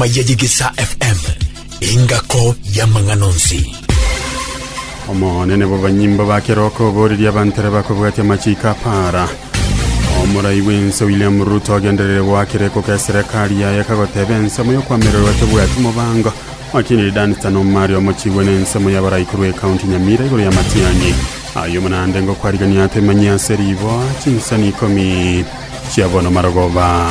Mayayigisa FM, engako y'amang'ana onsi. Omonene bobanyimbo ba keroko oboreria abantare bakobwatia amachiko apara omorai bw'ense William Ruto agenderere goakera ekoka eserekari yaye kagoteba ensemo y'okoamererwa tebwati mobango Wakiniri Dunstan Omari omochigwe na ensemo y'abarai korwa ekaunti Nyamira igoro ya Matiang'i aye omonande ngokwarigania atemanyia ase riboa chinsani ikomi chia bono marogoba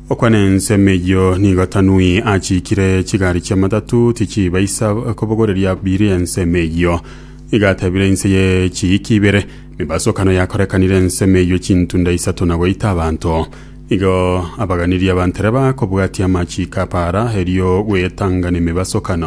Okwana ensemo eyio nigo Tanui achiikire chigari chi'amatatu tichibaisa kobogoreria biri ensemo eyio. Nigo atebire inse ye chiiki ibere, Mebasokano yakorekanire ensemo eyio chintunda isato na goita abanto. Nigo abaganirie abantereba kobwatia amachiiko a para erio gwetang'ani emebasokano.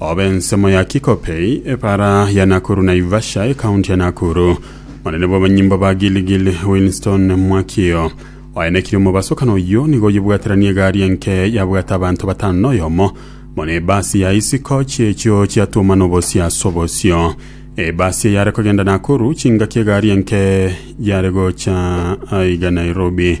Obe ensemo ya Kikopey, Epara ya Nakuru Naivasha, Ekaunti ya Nakuru. Monene bw'abanyimbo ba Gilgil Winston Mwakio oaenekirie omobaso kana oyio nigo oyebwateranie egari enke yabwate abanto batano na oyomo buna ebasi ya isiko chiechio chiatwoma nobosia ase obosio ebasi eyare kogenda Nakuru chingaki egari enke yare gocha aiga Nairobi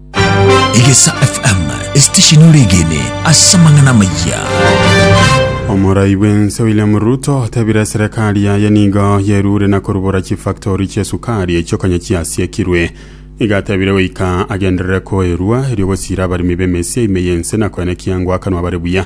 Egesa FM, esitesheni ore egene ase amang'ana amayia. Omorai bw'ense William Ruto otebire serikali yaye nigo yerure na korubora chifactori chi'esukari echio konya chiasiekirwe. Nigo atebire goika agenderere koerua erio gosiira abaremi b'emesia ime y'ense na koenekia ngoakanwa bare buya.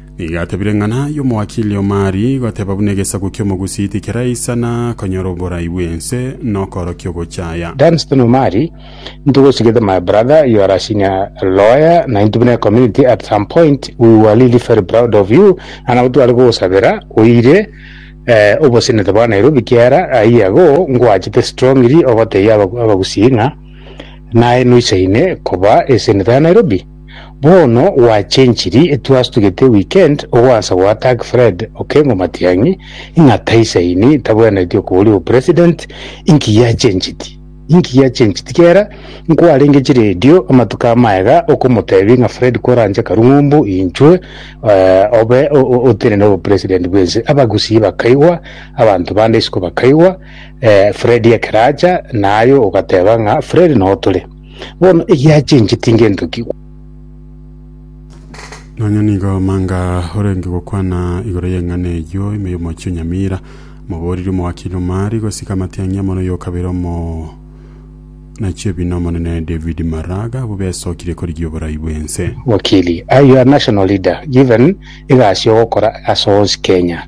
Nigo atebire ng'a naye omoakili o Mari, goteba buna egesaku ki'omogusii tikeraisana konyora oborai bw'ense na okoorokia ogochaya. Dunstan o Mari, Into gosu get my brother you are a senior lawyer na into buna ecommunity at some point we were really very proud of you na nabo tware kogosabera oire eh, obosenete bwa Nairobi kiara aye ago ngwachete strongly ogotebia abagusii ng'a naye noisaine koba eseneta ya Nairobi. Bono gwachenchiri twastugete weekend ogwansa goattack Fred Okengo Matiang'i ng'a taisaini tabwenereti okoboria o president inki giachenchiti? Inki giachenchiti? Kera nkwarenge chiredio amatuko amaye iga okomotebi ng'a Fred koranche karung'umbu inchwe eh, obe o- o- otenene obo president bwense. Abagusii bakaigwa, abanto bande isiko bakaigwa, eh, Fred ekero acha naye ogateba ng'a Fred noo tore. Bono egiachencheti ngento ki gokora? Nonya nigo manga orenge gokwana igoro y'eng'ana eyio ime y'omochie o Nyamira. Mobooriri omowakili omari gosika amatiang'i amo noyo kabere omo nachio ebina Omonene David Maraga abwo besokirie korigia oborai bw'ense. Wakili, Are you a national leader given egasi ogokora ase onsi Kenya?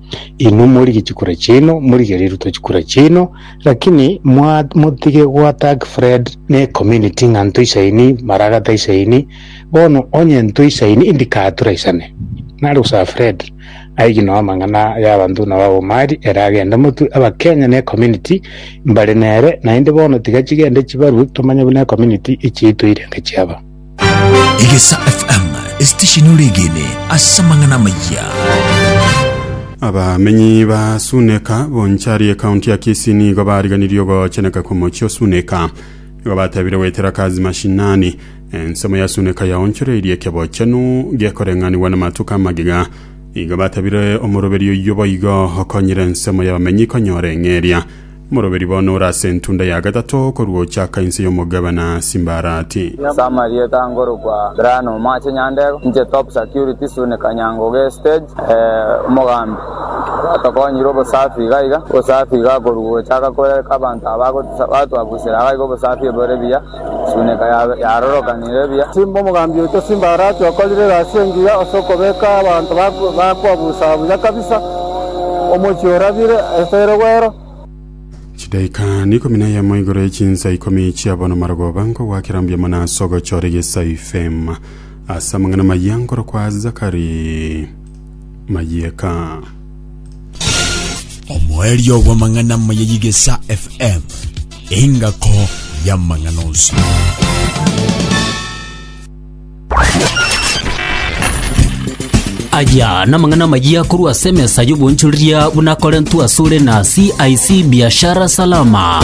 Inwe morigie chikura chiaino, morigie riria rutwa chikura chiaino, lakini mwa motige goattack Fred ne community ng'a ntwe isaini, maragata isaini, bono onye ntwe isaini indikaha turaisane. Nare gosaba Fred aigie noo amang'ana ya abanto buna ba Omari ere agende motwe abakenya ne community mbare nere, naende bono tiga chigende chibarwe tomanye buna ecommunity echiaito eirenge chiaba. Egesa FM, esitesheni ore egeene ase amang'ana amayia. Abamenyi ba Suneka, Bonchari, ekaunti ya Kisii nigo bariganirie ogocheneka kw'omochie o Suneka. Igo batebire goetera kazi mashinani. Ensemo ya Suneka yaonchoreirie ekebochenu gekoreng'anigwa namatuko amagega. Igo batebire omoroberio oyio boigo okonyire ensemo y'abamenyi konyora eng'eria. Omoroberi bono ore ase entunda ya gatato korwa ochaka inse y'omogabana Simbarati. Summary Etangorokwa Brian Omache Nyandego inche Top Security Sune Kanyangoge Stage eh Omogambi Oratokonyire obosafi iga iga Obosafi iga korwa gochaka kore abanto aba bagotisa batwabusera iga iga obosafi bore buya. Chimineka yabo yarorokanire buya. Simba omogambi oito, simba Harati okorire egasi engiya ase okobeka abanto bakwa busa buya kabisa, omochie orabire ase ere gwero. Chidaika ikomi na eyemo igoro ye chinsa ikomi chiabo namarogoba, nkogwakera mbuya mono ase ogochora egesaifema ase amang'ana amaya nkorokwa Zakari Mayeka. omoerio bw'amang'ana amaya y'Igesa FM, engako y'amang'ana onsi. aya namang'ana amayia korwa ase emesa y'obonchoreria buna akorentwe asore na cic biashara salama